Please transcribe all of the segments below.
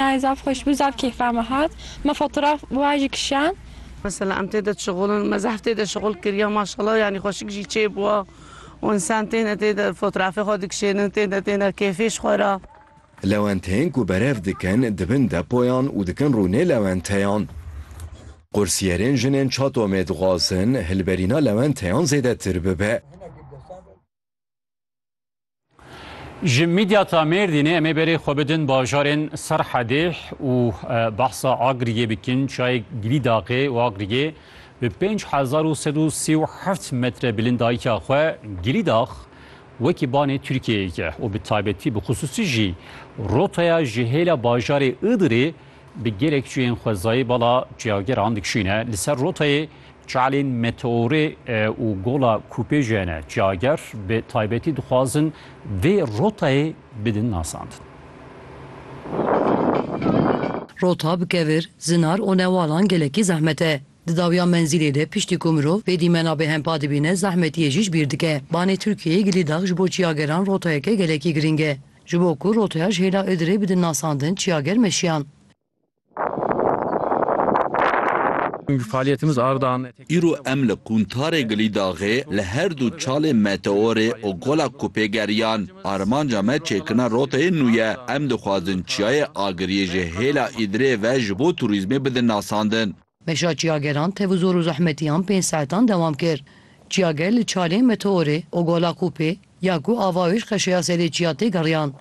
Nayê zaf xweş bû zaf keyfa me hat me fotoraf wa jî kişand. Mesela em tê de şixulin me zehf tê de şixul kiriya maşallah yanî xweşik jî çê bûa û însan tê ne tê de fotorafê xwe dikişênin tê ne tê ne keyfê ji xwe ra. Lewenteyên ku berev dikin di bin depoyan û dikin rûnê lewenteyan. Qursiyerên jinên Çatomê dixwazin hilberîna lewenteyan zêdetir bibe. Ji mîdyata Mêrdînê em ê berê xwe bidin bajarên Serhedê û behsa Agriyê bikin. Çayek gilî daqê û Agriyê bi pênc hezar û sed û sî û heft metre bilindayîka xwe gilî dax wekî banê Tirkiyeyêk e û bi taybetî bi xisûsî jî rotaya ji hêla bajarê Iğdırê bi gelek çiyên xwezayî bala çiyageran dikişîne. Li ser rotayê Çalên Meteorê û Gola Kûpêjê ne cager bi taybetî dixwazin vê rotayê bidin nasandin. Rota bi kevir, zinar û newalan gelekî zehmet e. Di dawiya menzîlê de piştî ku mirov vê dîmena bêhempa dibîne zehmetiyê jî ji bîr dike. Banê Tirkiyeyê gilî dax ji bo çiyageran rotayeke gelekî girîng e. Ji bo ku rotaya ji hêla Idirê bidin nasandin çiyager meşiyan. Îro em li Qûntarê Gilîdaxê li her du çalê Meteorê û Gola Kupê geriyan. Armanca me çêkirina roteyê nû ye. Em dixwazin çiyayê Agiriyê ji hêla Îdirê ve ji bo turîzmê bidin nasandin. Meşa çiyageran tev û zor û zehmetiyan pênc saetan dewam kir. Çiyager li çalê Meteorê, Ogola Kûpê, ya ku ava wê ji qeşeya serê çiya tê geriyan.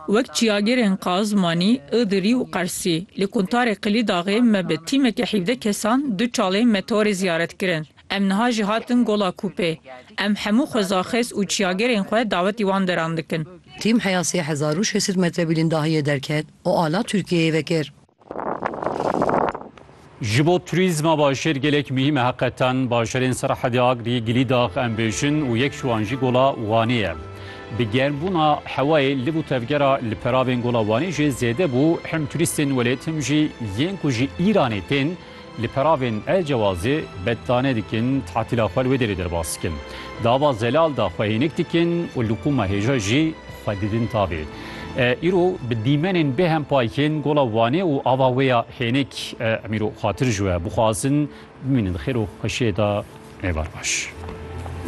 Wek çiyagerên Qazmanî, Idirî û Qersî, li Quntarê Qilîdaxê me bi tîmeke hîvdeh kesan du çalê Meteorê ziyaret kirin. Em niha jî hatin Gola Kûpê. Em hemû xwezaxêz û çiyagerên xwe dawetî wan deran dikin. Tîm heya sê hezar û şêst sed metre bîlîndahiyê derket û ala Tirkiyeyê vekir. Ji bo turîzma Başêr gelek muhîm e heqetan. Bajarên Serhedê Agrî, Gilîdax em bêjin û yek ji wan jî Gola Wanê ye. Bi germbûna hewayê liv û tevgera li peravên Gola Wanê jê zêde bû, him turîstên welêt him jî yên ku ji Îranê tên, Li peravên El Cewazê bettane dikin, tatîla xwe li wê derê derbas dikin. Di ava zelal de xwe hênik dikin û li qûma hêja jî xwe didin tavê. Îro bi dîmenên bêhem payikên Gola Wanê û ava wê ya hênik em îro xwatir ji we bixwazin. Bimînin di xêr û xweşiyê de. Êvar baş.